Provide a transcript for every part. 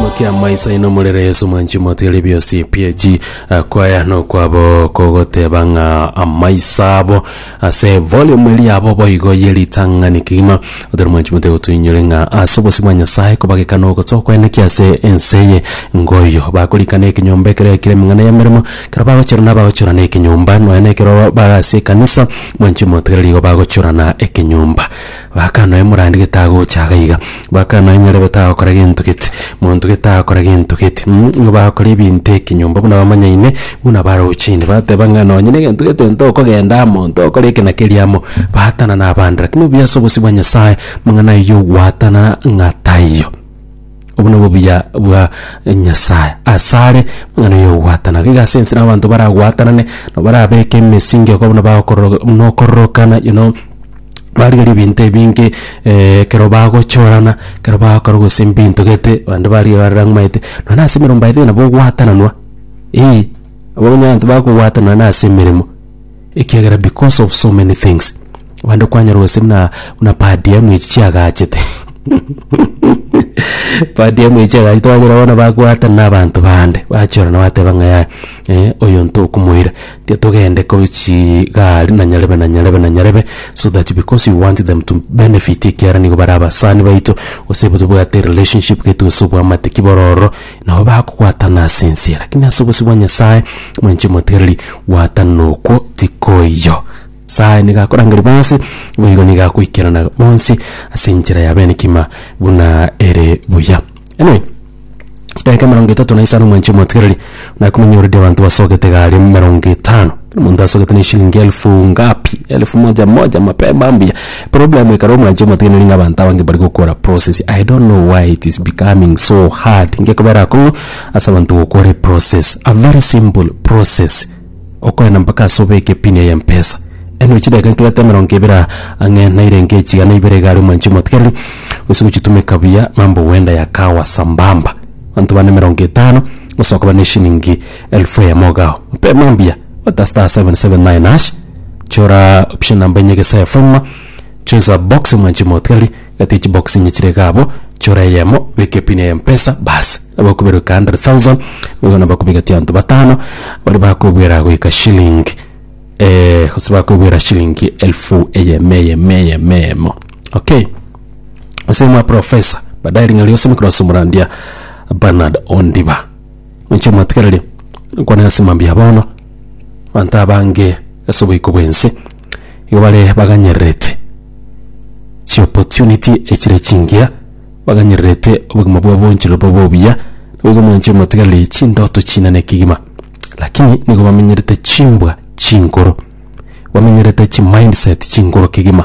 Mokia amaiso aino murere Yesu mwanchi motigarie biosi PAG eh, kwaya nokwabo kogoteba ng'a amaiso abo ase volume eri yabo boigo ye ritang'ani kegima otari mwanchi motiga gotuinyore ng'a ase obosi bwa Nyasaye kobageka nogocha okweneki ase ense eye ngoyo bakorikana ekenyomba ekere ekire emeng'ana y'emeremo ekero bagochorana bagochorana ekenyomba nonya na ekero bare ase ekanisa mwanchi motigari rigo bagochorana ekenyomba Baka noe morandi gete agocha iga iga, baka noe nyarebe tagokora gento gete, monto gete tagokora gento gete mh, nigo bagokora ebinto ekenyomba buna bamanyaine buna barochine, bateba ng'a nonye na egento gete ntokogenda amo, ntokora eke na keria amo, baatana na abande. Lakini obuya ase obosio bwa Nyasae, amang'ana aywo gwatanana ng'a taiyo. Obo nobo obuya bwa Nyasae asare buna noyo ogwatanare. Iga ase ensemo abanto baragwatanane, nabo barabeke emesingi okobuna bagokororo buna okororokana you know, barigeria ebinto ebinge ekero bagochorana, ekero bagokora gose mbinto gete, bande barigeria bare rang'omaete, nonya na ase emeremo mbaete nabo ogwatananwa, eeh, abwo nonya abanto bagogwatana nonya na ase emeremo. Ekiagera because of so many things abande kwanyora gose buna buna per diem echi chiagachete per diem echi chiagachete wanyora bono bagoatana na abanto bande bachiorana bateba ng'a yaya eh, oyo ntokomoira tia togende ko chigari na nyarebe na nyarebe na nyarebe so that because you want them to benefit ekiara nigo bare abasani baito gose tobwate relationship getu gose obwamate ki bororo Nao bakogwatana ase ense, lakini ase obosio bwa Nyasae mwenche omotigereri, gwatana okwo tikoiyo. Nyasae nigo akorangeria bonsi, boigo nigo agoikerana bonsi ase enchera ya bene kima buna ere buya. Anyway, edaika emerongo etato na isano mwenche omotigereri, nakomanya oredi abanto basogete egari emerongo etano. Omonto asogete na eshilingi elfu ngapi? Elfu moja moja mapema mbuya. Problem ekero omwanche omotegeneri ng'a abanto abange bari gokora process. I don't know why it is becoming so hard. Ngekobera akong'u ase abanto gokora eprocess. A very simple process. Okoenda mpaka ase obeke pin eye Mpesa. Eno chidakika nkere ata emerongo ebere aa ang'e naire enke echiga na ibere iga aria omwanchi omotigereri gose gochitumeka buya mambo huenda yakawa sambamba. Abanto bane emerongo etano, osoka bare na eshilingi Elfu eyemo ogao mpema mbuya gota star 779 hash chora option number enye gesa efoma choose a box mwanchi motigari gati chibox inye chire iga abo chora eyemo beka epin ya mpesa basi nabo okoberuka 100,000 nigo nabo okobigatia abanto batano baria bakobwera goika shilling eh gose bakobwera shilingi elfu eyemo eyemo eyemo eyemo okay ase mwa professor badae ring'ana riaso mokorase omorandia Bernard Ondiba. Ninche omwatigereria, nkwane ase mambia ya bono, abanto abange ase oboiko bw'ense nigo bare baganyererete chi'opportunity echire chingiya, baganyererete obogima bwabo boonchororo bobe obuya, nigo mwanche omwatigereria chindoto chinene kegima, lakini nigo bamenyerete chimbwa chinkoro, bamenyerete chimindset chinkoro kegima.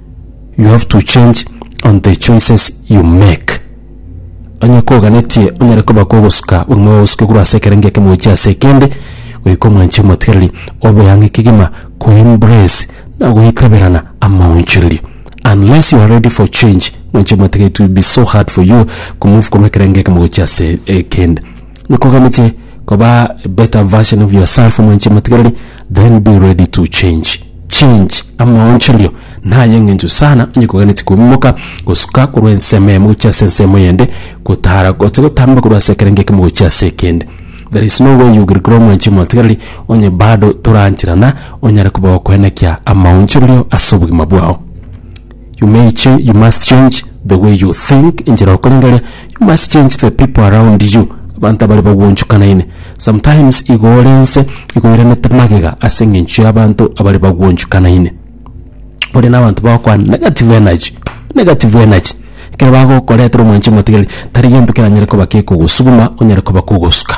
you have to change on the choices you make onye koganetie onyare koba kogosuka buna ogosuke korwa ase ekerenge ekemo gochia ase ekende goika omwanchi omotigereri obe ang'e kegima ko embrace na goikaberana amaonchorerio unless you are ready for change mwanchi omotiga it will be so hard for you ko move korwa ekerenge ekemo gochia ase ekende nikoganetie koba a better version of yourself mwanchi omotigereri Then be ready to change change amaonchorio naye ng'encho sana onye koganeti koimoka gosuka korwa ensemo emo gochia ase ensemo yende gotara gose gotamba korwa ase ekerenge ekemo gochia ase ekende there is no way you will grow mwanchi omotigareri onye bado torancherana onyare koba okoenekia amaonchorio ase obogima bwao. You may cha- you must change the way you think, enchera okoreng'eria, you must change the people around you, abanto abare bagwonchokanaine. Sometimes igo ore nse, igo oiranete magega ase eng'encho y'abanto abare bagwonchokanaine. Ore na abanto bagokwana negative energy, negative energy, ekero bagokoretera omwancha omotigeri, tari gento keranyare koba kekogosuguma onyare koba kogosuka.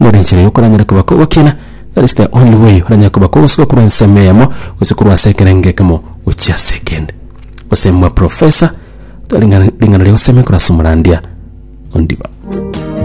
Nere enchera y'okoranyera koba kogokina, Kristo onde boigo oranyare koba kogosuka korwa ensemo eyemo gose korwa ase ekerengo ekemo gochia ase ekende. Gose mwa profesa, tore ring'ana ring'ana ria gosemikorwa ase omorandia ondiba.